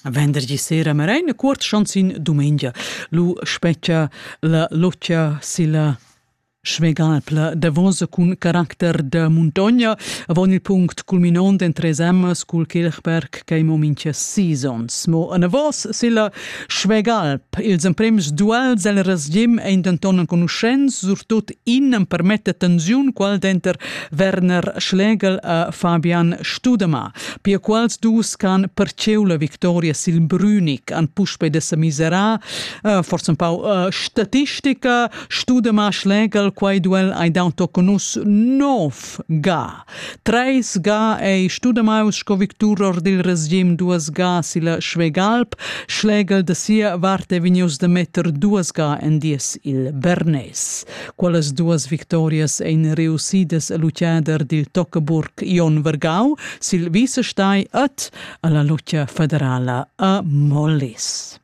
Vendergi sera marein cuort chanzin dumengia. Lu spetga la locia silla Schmegalpla davos cun caracter da muntogna avon il punct culminont en tres emmas cul Kirchberg che mo mincha sis ons. Mo anavos silla Schwegalp. Ils emprems duels el resgim ein denton enconuschents, surtut in empermetta tensiun qual denter Werner Schlegel e Fabian Studema. Pia quals dus can perceu la victoria sil Brünig han puspei de semisera, uh, forse un pau uh, statistica, Studema Schlegel quei duel hai dau toconus nov ga Treis ga ei studamaus sco victurer dil regim duas ga silla Schwegalp, schlegel da sia vart ei vegnius da metter duas ga en dies il Bernes. Quellas duas victorias ein reussidas a lutgader dil Tockeburg Jon Vergau sil vicestai et alla lutga federala a Mollis.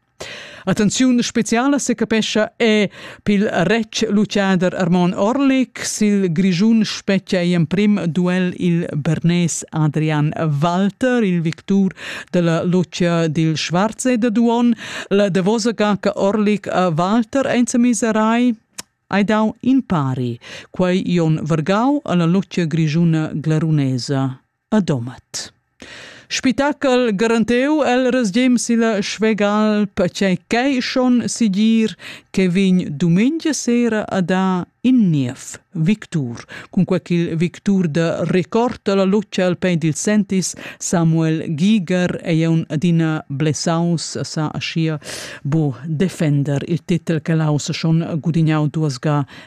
Attenziun speciala secapescha è pil retg luciader Armon Orlik. Sil Grischun spetgia ei emprim duel il bernes Adrian Walter, il victur della Lucia dil Schwarze de Duon. La davosa gaca Orlik a Walter enzamiserai hai dau in pari. Quei Jon Vergau alla Lucia Grischuna glarunesa. a Domat. Spitachel garanteu el resgem silla Schwegal perchei ch'ei schon sigir che vegn dumengia sera a da in niev victur. Cunque ch'il victur da record dalla luce al pein dil Sentis, Samuel Giger, ei un adina blessaus, sa aschia bo defender il titel che l'haus schon gudignau duas ga